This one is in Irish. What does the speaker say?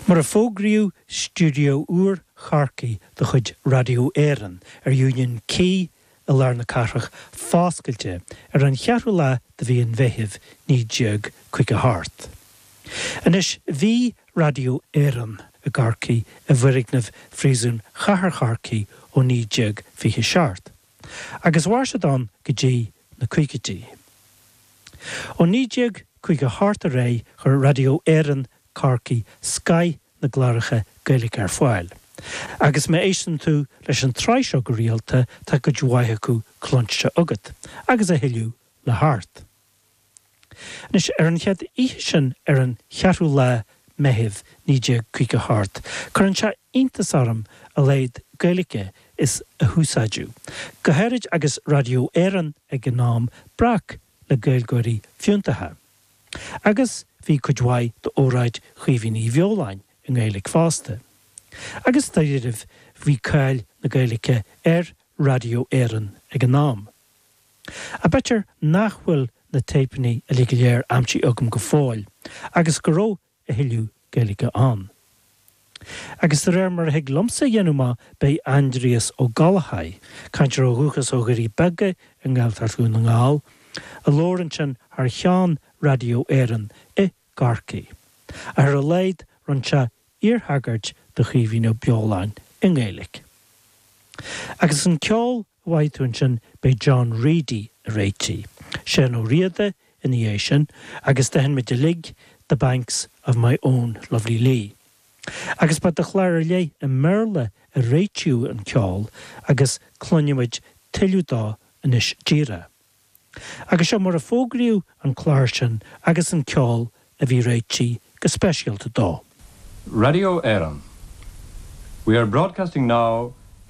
Mar a fógraíodh stiúideo úr Chorcaí de chuid Raidió Éireann ar Union Quay i lár na cathrach foscailte ar an cheathrú lá de mhí an Mheithimh 1958. Anois bhí Raidió Éireann i gCorcaigh i bhfoirgneamh Phríosún Chathair Chorcaí ó 1927. agus mhair siad ann go dtí na caogaidí. Ó 1958 ar aghaidh chuir Raidió Éireann Corcaigh scaith na gcláracha Gaeilge ar fáil. Agus má éisteann tú leis an tsraith seo go rialta tá cuid mhaith acu cluinste agat agus a thuilleadh le theacht. Anois, ar an chéad oíche sin, ar an cheathrú lá Meitheamh, 1958, cuireann sé iontas orm a laghad Gaeilge is a húsáideadh, go háirid agus Radio Éireann ag an am breac le Gaeilgeoirí fiúntacha. Agus bhí cuid mhaith d'óráid Chaoimhín Uí Bheoláin i nGaeilge fosta. Agus dáiríribh, bhí cáil na Gaeilge ar Radio Éireann ag an am. Ach b'fhéidir nach bhfuil na téipeanna uilig go léir aimsithe agam go fóill agus go raibh a thuilleadh Gaeilge ann. Agus de réir mar a thig liomsa a dhéanamh amach ba é Aindrias Ó Gallchóir, cainteoir ó dhúchas ó Dhoirí Beaga i nGaeltacht Dhún na nGall, a labhair ansin thar cheann Radio Éireann i gCorcaigh, ach ar a laghad rinne sé iarthagairt do Chaoimhín Ó Beoláin i nGaeilge. Agus an ceol a mhothaigh tú ansin ba é John Reidy a réitigh Seán Ó Riada ina dhiaidh sin agus d'aithin muid uilig The Banks of My Own Lovely Lee agus ba do chlár ar leith i mBéarla a réitíodh an ceol agus cluinfidh muid tuilleadh dó anois díreach agus seo mar a fógraíodh an clár sin agus an ceol a bhí réitithe go speisialta dó. Radio Éireann, We are broadcasting now